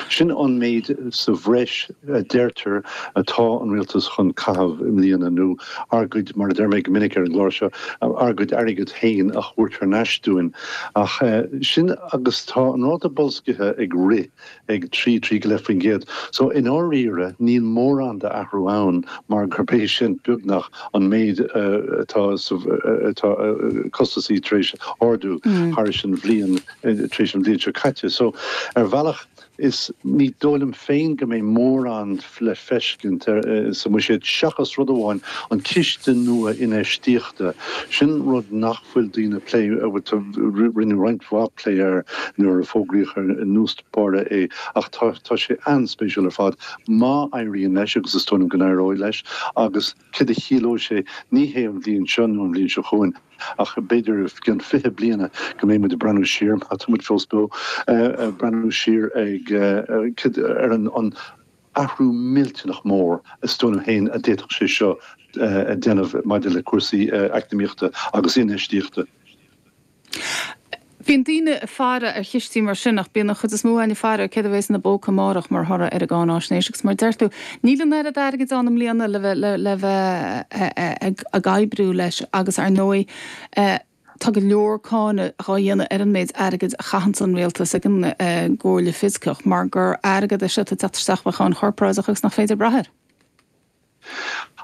Sin an méid sa bhreis, a deirtear, atá an rialtas chun caitheamh i mbliana, nó ár gcuid, mar a deir mé go minic ar an gclár seo, ár gcuid airgead féin a thabhairt thar n-ais dúinn. Ach sin agus tá an ráta bolscaithe ag rith ag trí, trí go leith faoin gcéad, so i ndáiríre níl mórán d'athrú ann mar gurb é sin, beagnach, an méid atá costasaí tar éis ardú thar ais an bhliain. tar éis an bhliain seo caite. So, ar bhealach, is, ní dóigh liom féin go mbeidh mórán le feiscint sa mbuiséad seachas rud amháin, an ciste nua infheistíochta. Sin rud nach bhfuil daoine ag plé, bhuel, rinneadh roinnt mhaith plé air nuair a fógraíodh ar dtús báire é ach tá sé an-spéisiúil ar fad má éiríonn leis agus is dóigh liom go n-éireoidh leis agus céard a chiallóidh sé, ní hé an bhliain seo nó an bhliain seo chugainn, Ach b'fhéidir i gceann fiche bliana go mbeidh muid ag breathnú siar, má tá muid fós beo, ag breathnú siar ar an athrú millteanach mór is dóigh liom féin a d'fhéadfadh sé seo a dhéanamh maidir le cúrsaí eacnamaíochta agus infheistíochta. Bíonn daoine ag faire ar chistí mar sin ach bíonn an chuid is mó againn ag faire ar céard a bheas ina póca amárach mar thoradh ar an gcáináisnéis agus mar a deir tú, níl an oiread airgid ann i mbliana le bheith ag oibriú leis agus ar ndóigh tá go leor cáineadh dhá dhéanamh ar an méid airgid a chaitheanns an Rialtas ag an gComhairle Fioscach mar gur airgead é seo atá ag teacht isteach ó cháin chorparáideach agus nach féidir brath air.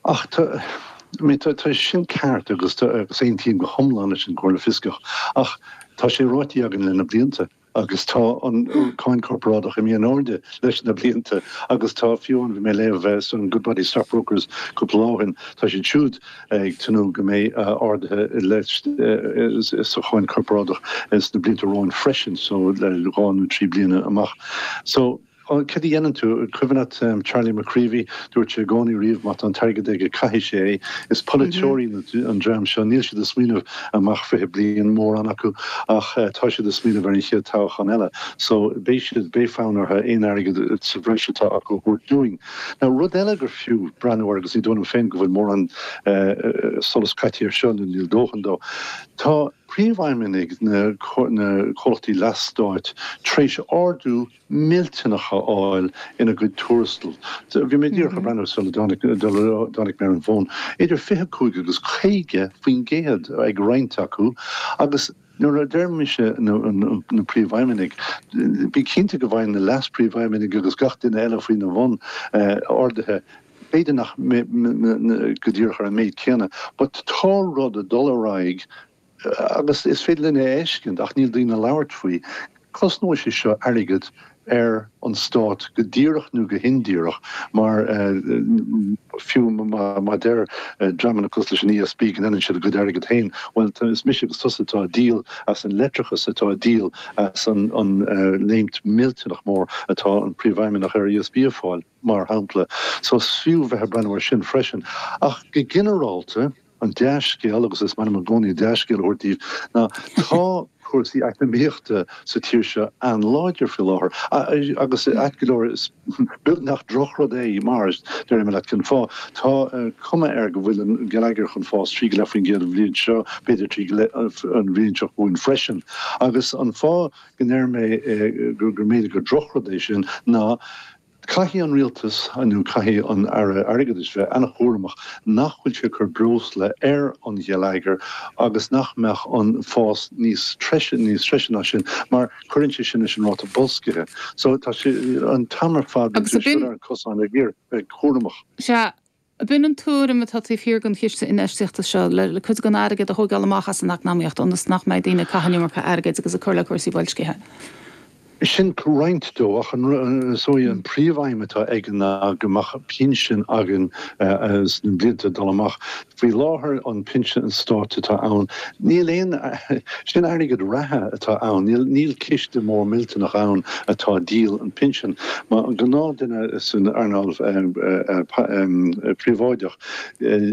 Ach tá sin ceart agus aontaím go hiomlán leis an gComhairle Fioscach ach tá sé ráite againn le sna blianta agus tá an cháin chorparáideach imithe in airde le sna blianta agus tá fiú an bhí mé léamh ansin Goodbody Stockbrokers cúpla lá ó shin tá siad siúd ag tnúth go mbeidh arduithe leis sa cháin chorparáideach sna blianta romhainn freisin so le dhá nó trí bliana amach so Bhuel, céard a dhéanann tú? Cuimhin leat Charlie McCreevy, dúirt sé i gcónaí riamh má tá an t-airgead aige caithfidh sé é. Is polaiteoirí an dream seo, níl siad ag smaoineamh amach fiche bliain, mórán acu, ach tá siad ag smaoineamh ar an chéad toghchán eile. So beidh siad, beidh fonn orthu aon airgead sa bhreis atá acu a thabhairt dúinn. Now rud eile gur fiú breathnú air agus ní dóigh liom féin go bhfuil mórán solas caite air seo, nó níl dóthain de. Tá príomhfheidhmeannaigh na comhlachtaí leathstáit tar éis ardú millteanach a fháil ina gcuid tuarastal. Bhí mé díreach ag breathnú air sula dtáinig mé ar an bhfón. Idir 25 agus 50 faoin gcéad ag roinnt acu agus nuair a deir mise na príomhfheidhmeannaigh, bí cinnte go bhfaigheann na leas-príomhfheidhmeannaigh agus gach duine eile faoina bhun arduithe, b'fhéidir nach go díreach ar an méid céanna, but tá rud ag dul ar aghaidh. agus is féidir linn é a fheiceáil ach níl daoine ag labhairt faoi, cosnóidh sé seo airgead ar an Stát go díreach nó go hindíreach mar fiú má deir dreamanna cosúil leis an ESB go ndéanann siad a gcuid airgid féin, bhuel, is mise agus tusa atá ag díol as an leictreachas, atá ag díol as an léimt millteanach mór atá an Príomhfheidhmeannach ar ESB ag fáil, mar shampla. So is fiú bheith ag breathnú air sin freisin. Ach go ginearálta. An dea-scéal, agus is maith liom i gcónaí dea-scéal a thabhairt daoibh, ná tá cúrsaí eacnamaíochta sa tír seo an-láidir faoi láthair. Agus ait go leor, is beag nach drochrud é, mar, déarfaidh mé leat cén fáth, tá cuma air go bhfuil an geilleagar chun fás trí go leith faoin gcéad an bhliain seo, b'fhéidir trí go leith an bhliain seo chugainn freisin. Agus an fáth go ndeir mé gur mb'fhéidir gur drochrud é sin ná, Caithfidh an Rialtas nó caithfidh an Aire Airgeadais bheith an-chúramach nach bhfuil sé ag cur breosla ar an gheilleagar agus nach mbeadh an fás níos treise níos treise ná sin mar cuireann sé sin leis an ráta boilscithe. So tá sé an t-am ar fad ar an gcosán a bheith cúramach. Sea, Ab in an tuairim atá taobh thiar den chiste infheistíochta seo, le cuid den airgead a thógáil amach as an eacnamaíocht ionas nach mbeidh daoine ag caitheamh an iomarca airgid agus ag cur le cúrsaí boilscithe. Sin roinnt dó, ach an príomhfheidhm atá aige ná go mbeadh pinsean againn sna blianta ag dul amach. Faoi láthair, an pinsean stáit atá ann Níl aon, sin airgead reatha atá ann, níl, níl ciste mór millteanach ann atá ag díol an pinsean. Mar an gnáthdhuine san earnáil phríobháideach,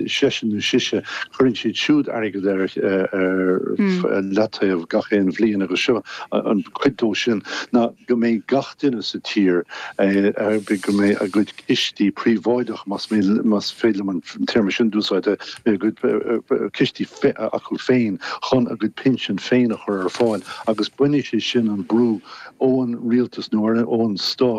seisean nó sise, cuireann siad siúd airgead ar leataobh gach aon bhliain agus seo an, cuid dó sin ná go mbeidh gach duine sa tír, go mbeidh a gcuid, cistí príobháideacha, más féidir liom an téarma sin d'úsáid, a gcuid cistí acu féin chun a gcuid pinsean féin a chur ar fáil agus bainfidh sé sin an brú ón rialtas nó ón stát,